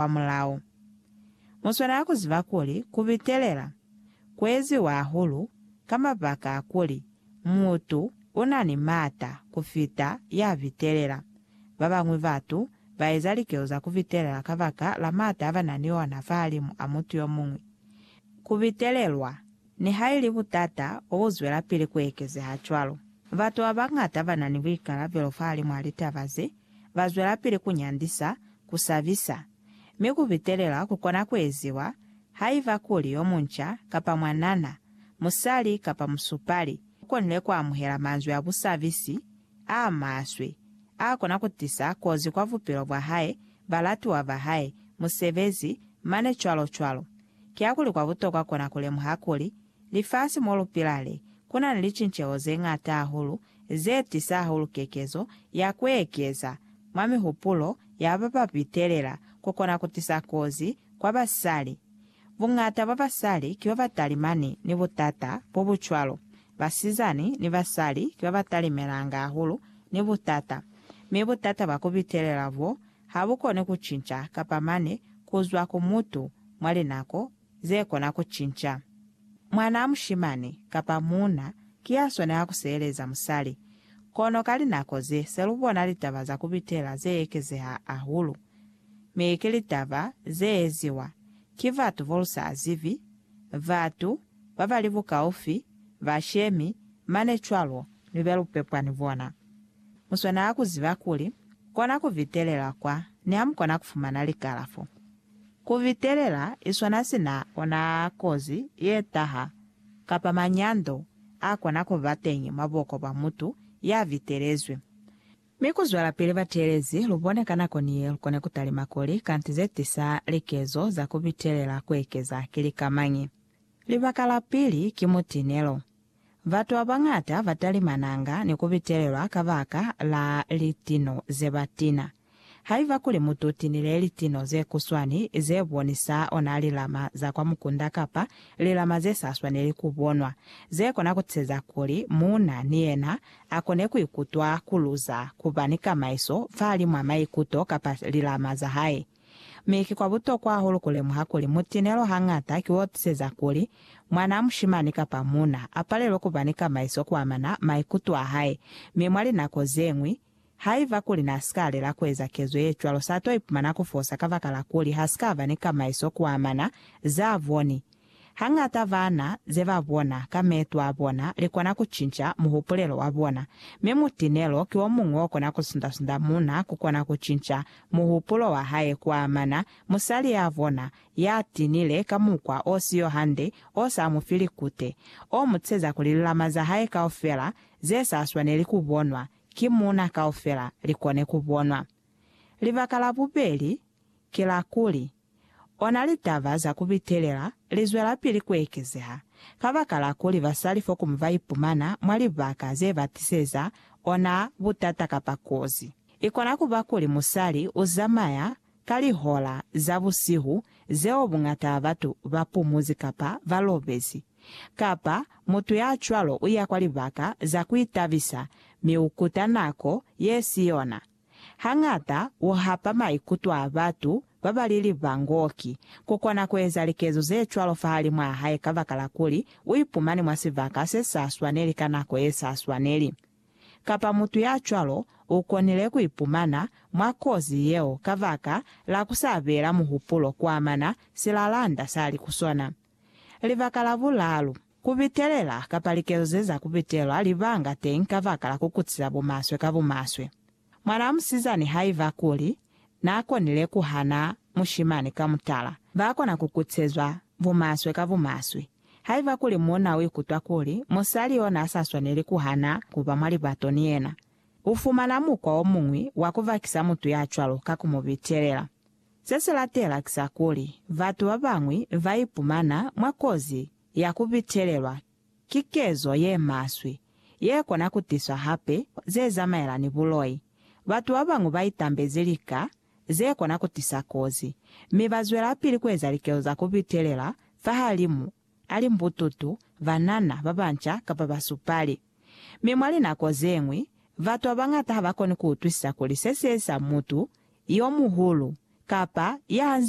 kwamulaho. Muswanela kuziba kuli kubitelela kueziwa hahulu ka mabaka a kuli mutu unani maata kufita yabitelela. Babañwi batu baeza likelo za kubitelela kabaka la maata abanani ona fahalimu a mutu yomuñwi. Kubitelelwa nihaili butata bobuzwelapili kuekezeha cwalo, batu babañata banani buikalabelo fahalimu a litaba ze ba zwelapili ku nyandisa, ku sabisa, mi ku bitelela ku kona ku eziwa haiba kuli yo munca kapa mwanana, musali kapa musupali, u konile ku amuhela manzwi a busabisi a maswe a kona ku tisa kozi kwa bupilo bwa hae, balatiwa ba hae, musebezi, mane cwalo cwalo. Kiakuli kwa butokwa kona ku lemuha kuli Lifasi mo lu pila le, ku na ni licinceho ze ñata hahulu ze tisa hahulu kekezo ya ku ekeza mwa mihupulo ya ba ba pitelela ku kona ku tisa kozi kwa basali. Buñata bwa basali ki ba ba talimani ni butata bo bu cwalo. Basizani ni basali ki ba ba talimelanga hahulu ni butata, mi butata bwa ku pitelela b'o ha bu koni ku cinca kapa mane ku zwa ku mutu mwa linako ze kona ku cinca. Mwanaa mushimani kapa muuna ki ya swanela ku seeleza musali. Kono ka linako ze, se lu bona litaba za ku bitela ze ekezeha hahulu. Mi ki litaba ze eziwa ki batu bo lu sa zibi, batu ba ba li bukaufi, bashemi, mane cwalo, ni be lu pepwa ni bona. Mu swanela ku ziba kuli kona ku bitelela kwa ni ha mu kona ku fumana likalafo. Ku vitelela iswana sina ona kozi ye taha, kapa manyando a kona ku ba teñi mwa buko bwa mutu ya vitelezwi. Mi ku zwelapili bateelezi lu bone ka nako ni ye lu kone ku talima kuli kanti ze tisa likezo za ku vitelela ku ekeza ki lika mañi. Libaka la pili ki mutinelo. Batu ba bañata ba talimananga ni ku vitelelwa kabaka la litino ze ba tina. Haiba kuli mutu tinile litino ze kuswani ze bonisa ona lilama za kwa mukunda kapa lilama ze sa swaneli ku bonwa, ze kona ku tiseza kuli muuna ni yena a kone ku ikutwa ku luza ku ba ni kamaiso fahalimw'a maikuto kapa lilama za hae. Mi ki kwa butokwa hahulu ku lemuha kuli mutinelo hañata ki wo tiseza kuli mwan'a mushimani kapa muuna a palelwe ku ba ni kamaiso ku amana maikuto a hae, mi mwa linako ze ñwi, Haiba kuli n'a si ka lela ku eza kezo ye cwalo, s'a t'o ipumana ku fosa kabakalakuli h'a si ka ba ni kamaiso ku amana z'a boni. Hañata bana ze ba bona ka meeto a bona li kona ku cinca muhupulelo wa bona, mi mutinelo ki o muñwi o kona ku sunda-sunda muuna ku kona ku cinca muhupulo wa hae ku amana musali y'a bona y'a tinile ka mukwa o si yo hande, o sa mu fi likute, o mu tsheza kuli lilama za hae kaufela ze sa swaneli ku bonwa ki muuna kaufela li kone ku bonwa. Libaka la bubeli ki la kuli, ona litaba za ku bitelela li zwelapili ku ekezeha kabakala kuli basali fokumu ba ipumana mwa libaka ze ba tiseza ona butata kapa kozi. I kona ku ba kuli musali u zamaya Ka lihola za busihu zeo buñata ba batu ba pumuzi kapa ba lobezi, kapa mutu ya cwalo u ya kwa libaka za ku itabisa mi u kuta nako ye si yona. Hañata u hapa maikuto a batu ba ba li libangoki ku kona ku eza likezo ze cwalo fahalimwaa hae kabakala kuli u ipumani mwa sibaka se sa swaneli ka nako ye sa swaneli. kapa mutu ya cwalo u konile ku ipumana mwa kozi yeo kabaka la ku sa beela muhupulo kuamana silalanda sa li ku sona. Libaka la bulalu, ku bitelela kapa likezo ze za ku bitelwa libanga teñi kabaka la ku kutisa bumaswe ka bumaswe. Mwanaa musizani haiba kuli naakonile kuhana mushimani ka mutala, baakona kukutsezwa bumaswe ka bumaswe. Haiba kuli muuna uikutwa kuli musali yo naasaswaneli kuhana kuba mwa libato ni yena, ufumana mukwa omuñwi wa kubakisa mutu yacwalo ka kumubitelela. Sesilatela ki sa kuli, batu babañwi baipumana mwa kozi ya kubitelelwa. Ki kezo ye maswe, ye kona ku tiswa hape, ze zamaela ni buloi. Batu ba bañwi ba itambezi lika ze kona ku tisa kozi, mi ba zwelapili ku eza likezo za ku bitelela fahalimu a limbututu, banana, ba banca, kapa basupali. Mi mwa linako ze ñwi, batu ba bañata ha ba koni ku utwisisa kuli se sieza mutu yo muhulu kapa ya hanzi.